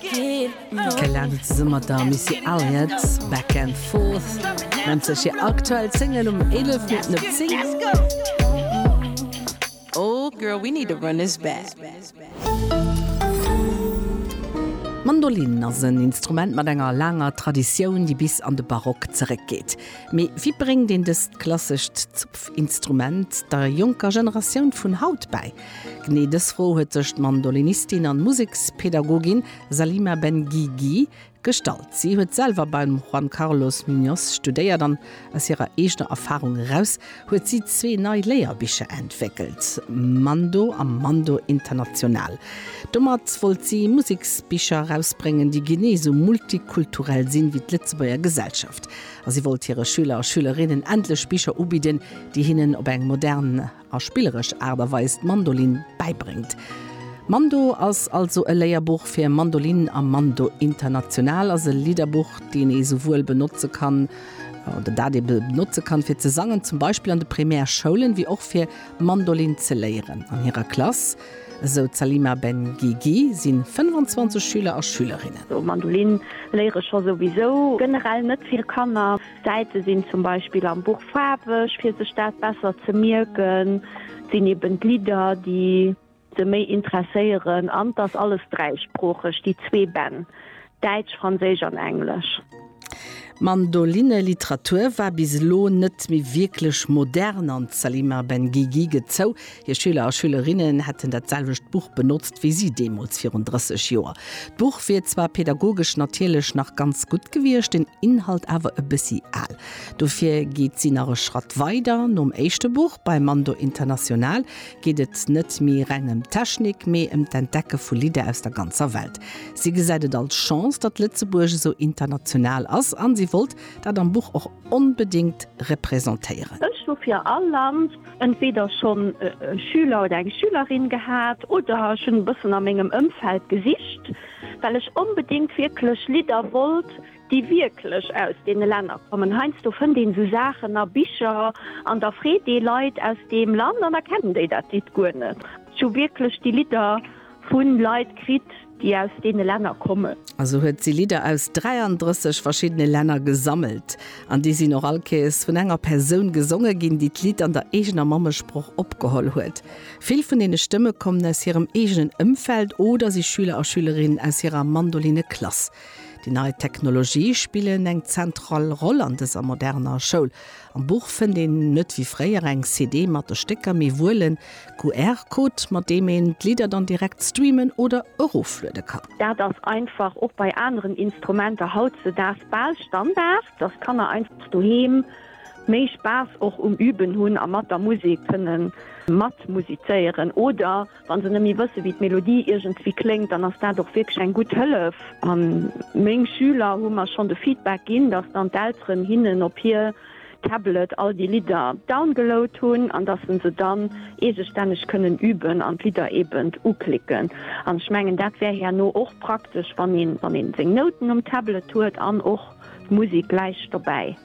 D'Kay Lade zesumme mat der Missy Elliott, Back and Forth, nennt sech hir aktuell Single um 11 Minutten op 10. D'Mandolinn ass en Instrument mat enger laanger Traditioun, déi bis an de Barock zeréckgeet. Mee wéi bréngt een dëst klassescht Zupfinstrument der jonker Generatioun vun haut bäi? Genee dës Fro huet sech d'Mandolinistin an Musekspädagogin Salima Ben Gigi gestallt. Si huet selwer beim Juan Carlos Muñoz studéiert an aus hirer eegener Erfarung eraus huet si zwee nei Léierbicher entwéckelt, Mando a Mando International. Domat wollt si Museksbicher erausbréngen, déi genee esou multikulturell sinn, wéi d'Lëtzebuerger Gesellschaft. A si wollt hire Schüler a Schülerinnen endlech Bicher ubidden, déi hinnen op eng modern. a spilleresch Aart a Weis d'Mandolin bäibréngt. Mando ass also e Léierbuch fir Mandolin a Mando International ass e Lidderbuch, deen ee souwuel benotze kann, oder dat ee benotze kann, fir ze sangen, zum Beispill an de Primärschoulen, wéi och fir Mandolin ze léieren. An hirer Klass, esou d'Salima Ben Gigi, si 25 Schüler a Schülerinnen. Mandolin léiere scho souwisou generell net vill Kanner. D'Säite sinn zum Beispill am Buch faarweg, fir sech dat besser ze mierken. Et sinn eben d'Lidder, déi se méi interesséieren. An et ass alles dräisproocheg, déi zwee Bänn, Däitsch, Franséisch an Englesch. D'Mandolinne-Literatur war bis elo net méi wierklech modern an d'Salima Benguigui gëtt zou, Hir Schüler a Schülerinnen hätten dat selwecht Buch benotzt wéi si deemools virun 30 Joer. D'Buch wier zwar pedagogesch natierlech nach ganz gutt gewiescht, den Inhalt awer e bëssi al. Dofir geet si nach e Schratt weider. Nom éischte Buch Bei Mando International geet et net méi reng ëm Technik, mee ëm d'Entdecke vu Lidder aus der ganzer Welt. Si gesäit et als Chance, datt Lëtzebuerg esou international ass a si wollt dat am Buch och onbedéngt representéieren. Ech hu fir all Land entweder schonn e Schüler oder eng Schülerin gehat oder ech hunn e bëssen a mengem Ëmfeld gesicht, well ech onbedéngt wierklech Lidder wollt, déi wierklech aus deene Länner kommen. Heiansdo fënnt een esou Saachen a Bicher an da freet ee Leit aus deem Land an da kennen déi dat Lidd guer net. Ech hu wierklech déi Lidder vu Leit kritt. déi aus deene Länner kommen. A sou huet si Lidder aus 33 verschiddene Länner gesammelt. An déi sinn och all Kees vun enger Persoun gesonge ginn, déi d'Lidd an der eegener Mammesproch opgeholl huet. Vill vun deene Stëmme kommen aus hirem eegenen Ëmfeld oder si Schüler a Schülerinnen aus hirer Mandolinne-Klass. Déi nei Technologië spillen eng zentral Roll an dëser moderner Schoul. Am Buch fënnt een net wéi fréier eng CD mat de Stécker, mee wuel en QR-Code, mat deem een d'Lidder dann direkt streamen oder erofluede kann. Dat ass einfach och bei aneren Instrumenter hautzedaags bal Standard, dass d'Kanner einfach doheem méi Spaass och um Üben hunn a mat der Musek kënnen matmusizéieren oder Wa se nëmme wësse wéi d'Melodie iergendwéi kléngt, dann ass dat och wierklech eng gutt Hëllef. A meng Schüler hu mer schonn de Feedback ginn, datt dann d'Elteren hinnen op hir Tablet all déi Lidder downgeload hunn an datt se se dann eegestänneg kënnen üben an d'Lidder eeben uklicken. An ech mengen dat wär herno och praktesch wann ee seng Nouten um Tablet huet an och d'Musek gläich dobäi.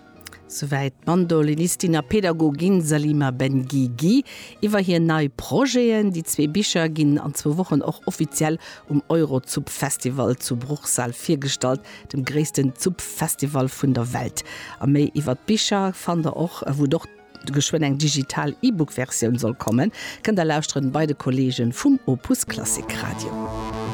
Souwäit d'Mandolinistin a Pedagogin Salima Benguigui iwwer hir nei Projeten. Déi zwee Bicher ginn an zwou Wochen och offiziell um Eurozupf Festival zu Bruchsal virgestallt, dem gréissten Zupf Festival vun der Welt. A méi iwwer d'Bicher fannt der och, wou et och geschwënn eng digital E-Book Versioun soll kommen, kënnt der lauschteren bei de Kollegen vum Opus Klassik Radio.